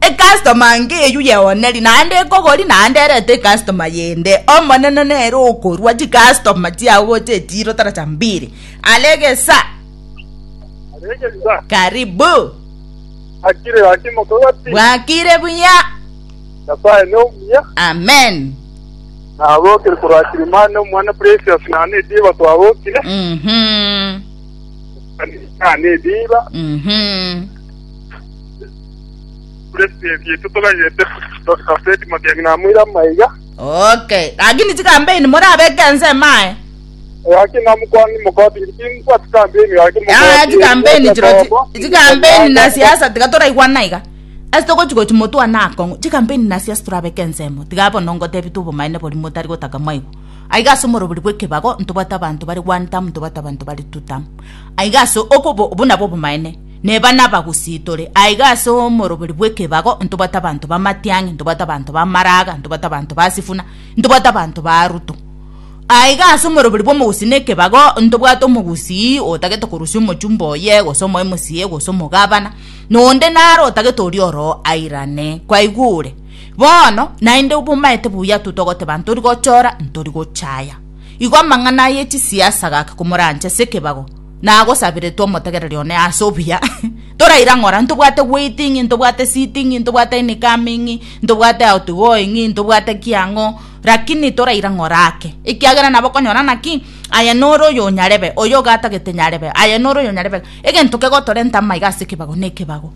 Ecustoma anga eywo yeoneri naende ekogori naende erete ecustoma yende. Omonene nere okorua chicustoma chiao gocha echiro tara cha mbiri. Aregesa. Aregesa. Karibu. Akire gaki mokogati. Bwakire buya. Nyasaye ne omuya. Amen. Nabokire korwa Kilimani omwana Precious nane ediba twabokire. Mhm. Nane ediba. Mhm. Okay, lakini chikambeini morabeke ense emaye. Yaya chikambeini chiro chi- chikambeini na siasa tiga toraigwana iga. Ase togochi gochi motwane akong'u, chikambeini na siasa torabeke ense emo. Tiga bono ngotebitwe obomaene boria motari gotaka mwaigo. Aiga ase omorobori bw'ekebago ntobwate abanto bare one term, ntobwate abanto bare two term. Aiga ase okobo, obwo nabwo obomaene. Neba nabagusitore aiga ase omoroberi bw'ekebago, ntobwate abanto b'amatiang'i, ntobwate abanto b'amaraaga, ntobwate abanto ba Sifuna, ntobwate abanto ba Arutu. Aiga ase omoroberi bw'omogusi nekebago ntobwate omogusii otagete korusia omochumba oye, gose omoemusi, gose omogabana, na onde nare otagete oria oroo airane. Kwaigwa ore? Bono naende bomaete buya intwe togoteba ntori gochora, ntori gochaya. Igo amang'ana ye chisiasa agaka komorancha ase ekebago. nagosaberetwe omotegereri one ase obuya, toraire ang'ore aye, ntobwate waiting, ntobwate sitting, ntobwate incoming, ntobwate outgoing, ntobwate ki ang'o, rakini toraire ang'ore ake, ekiagera nabo okonyora ng'a ki, aye nore oyonyarebe, oyo ogatagete nyarebe, aye nore oyonyarebe, egento kegotorenta amaiga ase ekebago nekebago.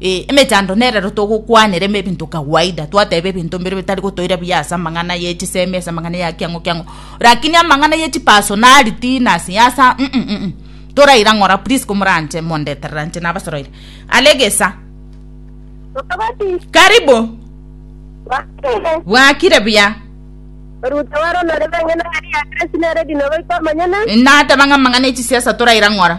Ee, emechando nerero togokwanera ime ebinto kawaida, twateba ebinto mbire bitari gotoira buya ase amang'ana ye chisemi, ase amang'ana ya kiang'o kiang'o, lakini amang'ana ye chipersonality na siasa mm, mm, mm. Toraira ng'ora please komoranche mondeterera inche nabasaroire. Are egesa. Mokabati, Karibu. bakire. Bwakire buya. Oruta waro nore bang'e nari ya Grace nere dino baito amanyene. Nateba ng'a amang'ana ye chisiasa toraira ng'ora.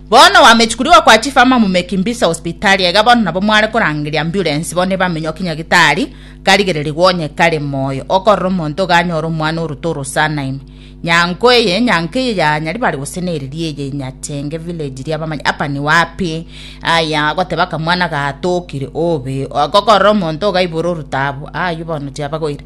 Bono wamechukurigwa kwa chief ama mumeki mbisa hospitali aiga bono nabo mware korangeria ambulance bono ebamenywa kinyagitari karigererigwe onye kare moyo okorora omonto iga anyore omwana oruto orosana ime nyanko eye nyanko eye ya nyaribari gose na eriri eye nyachenge village ria bamanya apa ni wapi aya goteba kamwana gatokire obe okorora omonto iga ibore orutabu ayu bono chiabagoire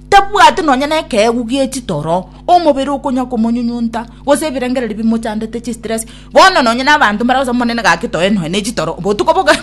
Tabwati nonya nekeegu gie chitoro, omobere okonya komonyunyunta, gose ebirengererio bimochandete chistress. Bono nonya nabanto mbare gose Omonene gaki toe noe ne chitoro botuko boka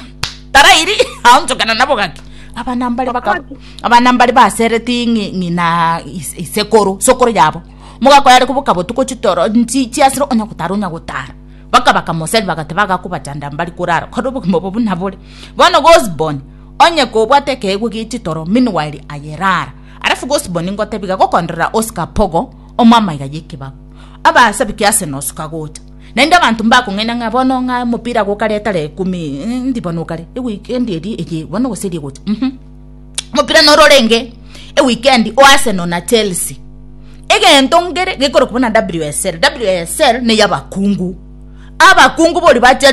tarairi aonchokana nabo gaki. Abana mbare baka abana mbare basereti ng'i- ng'ina is- isekoro sokoro yabo. Mogaka oyare koboka botuko chitoro nchi chiasire onya gotara onya gotara. Baka bakamoseri bagateba agakobachanda mbari korara kore obogima obo buna bore. Bono Gosborn. Onye kobwate ekeegwa gie chitoro meanwhile aye rara. Alafu gose boni ngotebiga gokonderera Oscar Pogo omo amaiga y'ekebago. Abasabiki ase nosoka gocha. Naende abanto mbakong'aina ng'a bono ng'a omopira gokare tara ekumi endi bono okare eweekend eri eye bono gose eri egocha uhum. Omopira noro orenge eweekend o Arsenal na Chelsea. Egento ngere gekorokwa buna WSL. WSL ney'abakungu. Abakungu boria ba Chelsea.